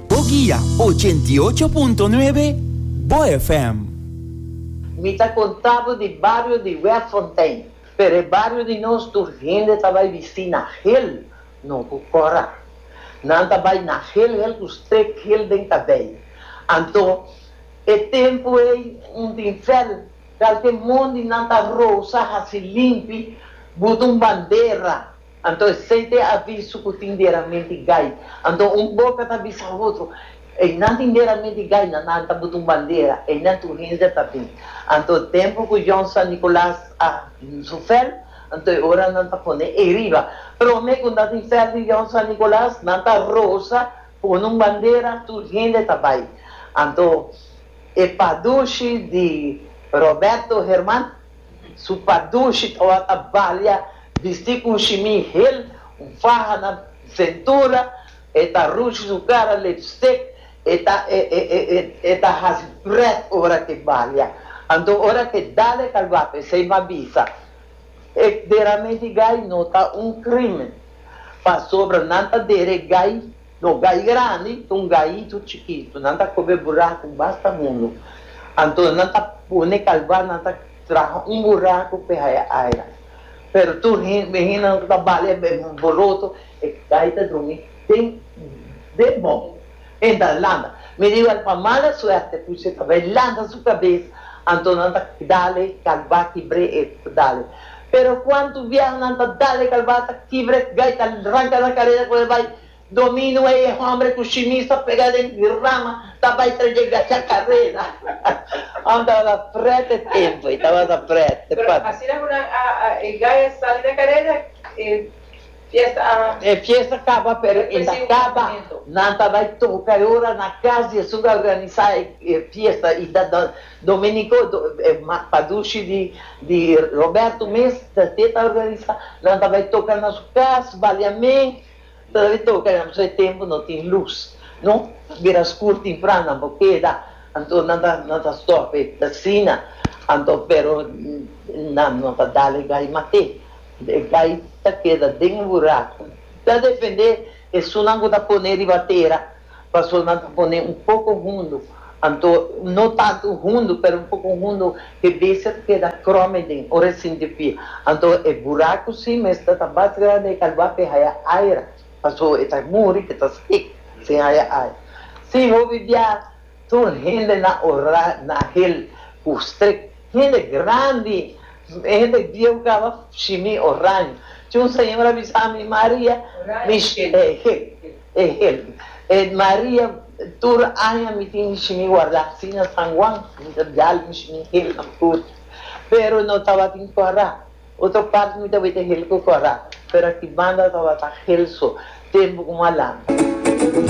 Bo guia ochenta i ocho punto nuebe, Bo FM. Mi ta contá bo di bario di Webfontein. Pero e bario di nos tur hende ta bai bistí na hel, no cu cora. Nan ta bai na hel hel cu strek hel den cabei. Anto, e tempu ei un tin fel, calke mondi nan ta rosa haci limpi buta un bandera. Anto esei ta e aviso ku tin deraminti gai. Anto un boka ta bisa otro, Einan tin deraminti gai, na nan ta buta un bandera, einan tur hende ta bin. Anto e templo ku Jon San Nikolaas a su fel, anto e ora nan ta pone ei riba. Prome ku nan tin fel di Jon San Nikolaas, nan ta rosa, pone un bandera, tur hende ta bai. Anto e pa dushi di Roberto Herman. Su padushit ora ta balia, bisti ku un shimi hel, un faha na sentura, e ta rushi su kara, lipstick, e ta e e e e e ta hasi pret ora ke balia. Anto ora ke dale ta guapi esei ma bisa, e dera menti gai no ta un krimen, pasobra nan ta dere gai. No gai grandi ta un gaitu chikitu. Nan ta kobe buraku basta mundu. Anto nan ta pone kalba, nan ta traha un buraku pe haya aira. Pero tur hende ku ta bali e boroto, e gai ta drumi den den bon. E ta lanta. Mi riba el pa mala suerte puchi e ta bay lanta su kabes, anto nan ta dale kalba kibre e ta dale. Pero cuantu vieho nan ta dale calbata kibre gai ta ranca nan carera cu e bai domino ey e hombre cu shimish ta pega den rama ta bai tra dje gacha carera Ham tabata pret e tempo ey tabata pret e Pero asina cu nan a e gai a sali na carera e fiesta a. E fiesta caba pero e ta caba nan ta bai toca e ora na cas di esun ta organisa e fiesta y ta. Domenico Padushi di Roberto mes te ta organisa, nan ta bai toca na su cas, Baliamen ta debe toca ya pasobra e tempo no tin luz no, ta bira scur timpran nan por keda anto nan ta nan ta stop asina anto pero nan no ta dal e gai mate, e gai ta keda den e buraco, ta defende esunnan cu ta pone riba tera Pasolnan ta pone un poko hundu, anto no tantu hundu pero un poko hundu ke bese ta keda krome den ora e sinti pia. Anto e buraku si mester ta bas grandi e ta lua p'e haya aera paso e ta muri ke ta stik sin haya aera. Si hopi bia tur hende na ora na hel ku strik. Hende grandi, hende bieu kaba shimi oraño. Tin un señor a bisa mi Maria mi shimi hel. Maria, tur aña mi tin bishi mi warda asina San Juan, mi ta bial bishi mi hel na tur, pero no tabatin kora, otro part mi tabeta hel ku kora, pero aki banda tabata hel so, tempu ku malanga.